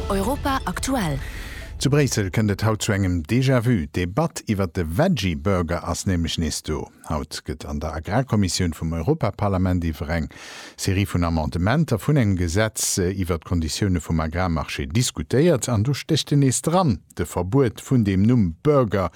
Europa aktuell. Zu Bréissel kënnt et haut zu engem Déjà-vu. D'Debatt iwwert de Veggie Burger ass nämlech nees do. Haut gëtt an der Agrarkommissioun vum Europaparlament iwwer eng Serie vun Amendementer vun engem Gesetz iwwert d'Konditioune vum Agrarmarché diskutéiert. An do stécht en nees dran, de Verbuet vun deem Numm Burger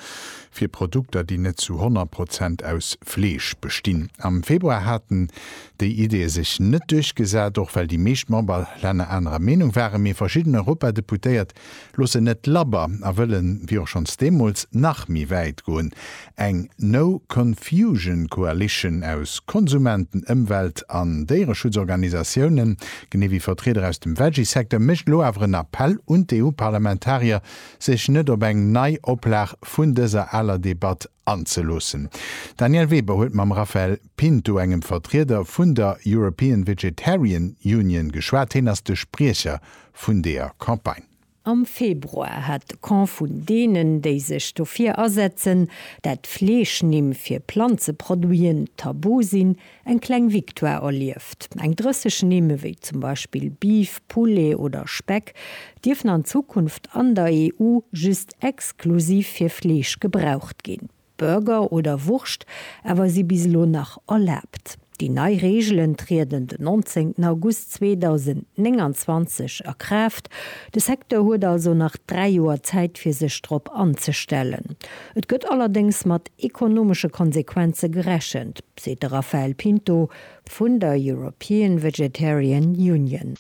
fir Produkter, déi net zu 100 Prozent aus Fleesch bestinn. Am Februar haten déi Idee sech net duerchgesat, och well déi meescht Memberlänner anerer Meenung waren. Mee verschidden Europadeputéiert loossen net labber a wëllen, wéi och schonns deemools, nach méi wäit goen, Eng No Confusion Coalition aus Konsumenten, Ëmwelt an Déiereschutzorganisatiounen, genee wéi Vertrieder aus dem Veggie-Secteur, mécht elo awer en Appell un d'EU-Parlamentarier, sech net op eng nei Oplag vun dëser aler Debatt anzeloossen. D'Danièle Weber huet mam Raphael Pinto, engem Vertrieder vun der European Vegetarian Union geschwat. Heen ass de Spriecher vun deeër Campagne. Am Februar hat de Camp vun deenen, déi sech dofir asetzen, dat Fleeschnimm fir Planzeproduiten tabu sinn, Eng kleng Victoire erlieft. Eng 30 Nimm, wéi zum Beispill Beef, Poulet oder Speck, dierfen an Zukunft an der EU just exklusiv fir Fleesch gebraucht ginn. Burger oder Wurscht awer si bis elo nach erlaabt. Déi nei Reegelen trieden den 19 August 2029 a Kraaft. De Secteur huet also nach dräi Joer Zäit fir sech drop anzestellen. Et gëtt allerdéngs mat ekonomesche Konsequenze gerechent. seet de Rafael Pinto vun der European Vegetarian Union.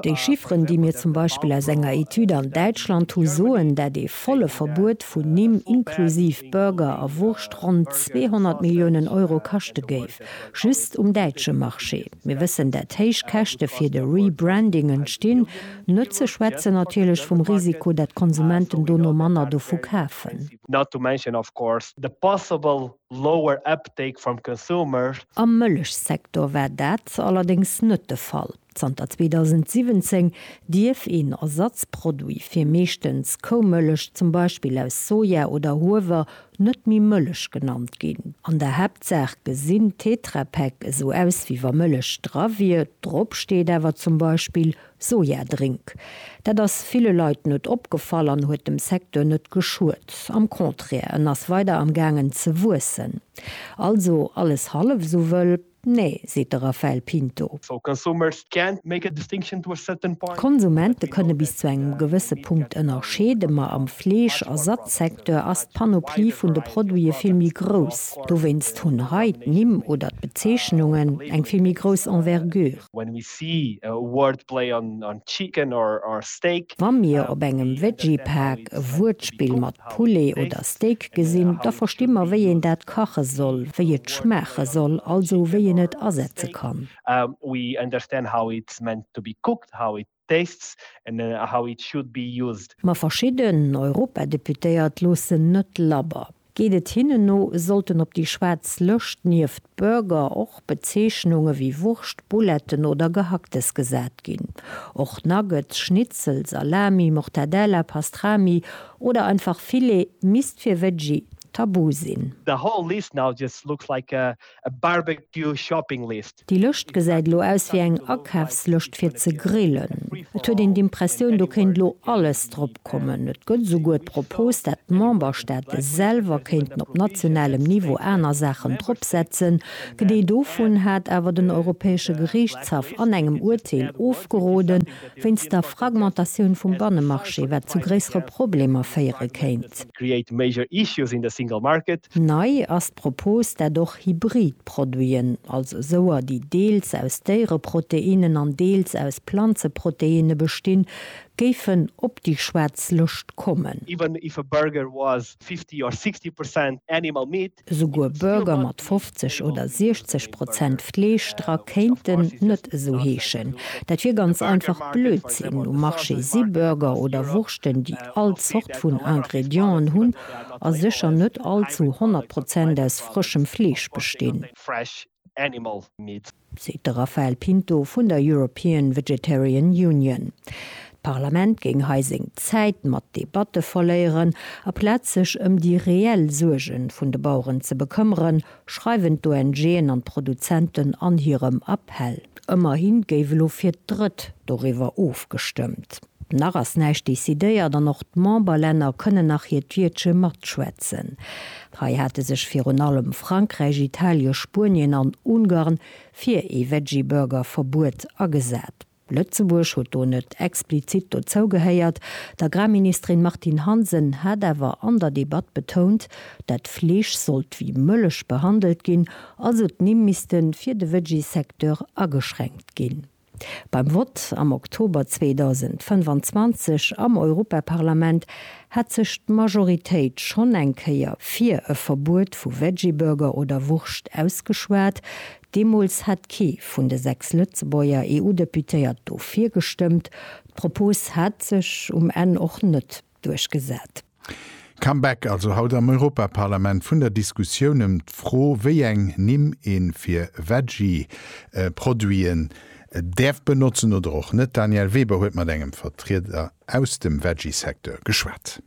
Déi Chifferen, déi mir zum Beispill aus enger Etüd an Däitschland hu soen, dat ee volle Verbuet vun Nimm inklusiv Burger a Wurscht ronn 200 Milliounen Euro kaschte géif, just um däitsche Marché. Mir wëssen, dat héich Käschte fir de Rebranding entstinn, net ze schwätzen natierlech vum Risiko, dat d'Konsumenten dono manner dovu kafen. not to mention of course the possible lower uptake from consumers. Am Mëllechsektor war dat allerdéngs net de Fall. Zanter 2017 dierf een Ersatzproduit fir meeschtens Koumëllech, zum Beispill aus Soja oder Huewer, net méi Mëllech genannt ginn. An der Haaptsaach gesinn Tetra Pak esou aus wéi wa Mëllech dra wier, drop steet awer zum Beispill Sojadrink. Dat ass ville Leit net opgefall an huet dem Secteur net geschuet. Am Contraire, en ass weider am gaangen ze wuessen. Also alles hallef esou wëll? Nee, seet de Raphael Pinto. D'Konsumente kënne bis zu engem gewësse Punkt ënnerscheeden, ma am Fleesch a Satzsecteur ass d'Panoplie vun de Produite vill méi grouss. Dowéinst hunn hei d'Nimm oder d'Bezeechnungen eng vill méi grouss Envergure. When we see a wordplay on on chicken or or steak. Wa mir op engem Veggie-Paak e Wuertspill mat Poulet oder Steak gesinn, da versti mer, wéi een dat kache soll, wéi et schmaache soll, also wéi een et asetze kann. We understand how it's meant to be cooked, how it tastes and how it should be used. Ma verschidden Europadeputéiert loossen net labber. Geet et hinnen no, sollten op déi schwaarz Lëscht nieft Burger och Bezeechnunge wéi Wurscht, Bouletten oder Gehacktes gesat ginn. Och Nuggets, Schnitzel, Salami, Mortadella, Pastrami oder einfach Filet misst fir Veggie tabu sinn. The whole list now just looks like a a barbecue shopping list. Déi Lëscht gesäit elo aus wéi eng Akafslëscht fir ze grillen. Et huet een d'Impressioun, do kéint elo alles drop kommen. Et gëtt esouguer d'Propos, dat d'Memberstaate selwer kéinten op nationalem Niveau aner Saachen drop setzen. D'Idee dovun hat awer den Europäesche Geriichtshaff an engem Urteel ofgeroden. wéinst der Fragmentatioun vum Bannemarché, wat zu gréissere Problemer féiere kéint. Nei ass d'Propos, dat och hybrid Produiten, also souer, déi deels aus Déiereproteinnen an deels aus Planzeproteinne bestinn, géifen op déi schwaarz Lëscht kommen. Esouguer Burger mat 50 oder 60 Prozent Fleesch dra kéinten net esou heeschen. Dat wier ganz einfach Blödsinn. Um Marché si Burger oder Wurschten, déi all Zort vun Ingredienten hunn a sécher net all zu 100 Prozent aus frëschem Fleesch bestinn. Animal Meat. Seet de Rafael Pinto vun der European Vegetarian Union. D'Parlament géing hei seng Zäit mat Debatte verléieren, aplaz sech ëm déi reell Suerge vun de Baueren ze bekëmmeren, schreiwen d'ONGen an d'Produzenten an hirem Appell. Ëmmerhi géif elo fir d'Drëtt doriwwer ofgestëmmt. Nach ass näischt decidéiert an och d'Memberlänner kënnen nach hiert Wiertche matschwätzen. Hei hate sech virun allem Frankräich, Italien, Spuenien an Ungarn fir ee Veggie-Burger-Verbuet agesat. Lëtzebuerg huet do net explizit dozou gehéiert. D'Agrarministerin Martine Hansen hat awer an der Debatt betount, dat Fleesch sollt wéi Mëllech behandelt ginn, also d'Nimm misste fir de Veggie-Secteur ageschränkt ginn. Beim Vott am Oktober 2025 am Europaparlament hat sech d'Majoritéit schonn eng Kéier fir e Verbuet vu Veggieburger oder Wurscht ausgeschwat. Deemools hat kee vun de sechs Lëtzebuerger EU-Deputéiert dofir gestëmmt. D'Propos hat sech um Enn och net duerchgesat. Comeback also haut am Europaparlament vun der Diskussioun ëm d'Fro, wéi eng Nimm een fir Veggie-Produiten däerf benotzen oder och net. D'Danièle Weber huet mat engem Vertrieder aus dem Veggie-Secteur geschwat.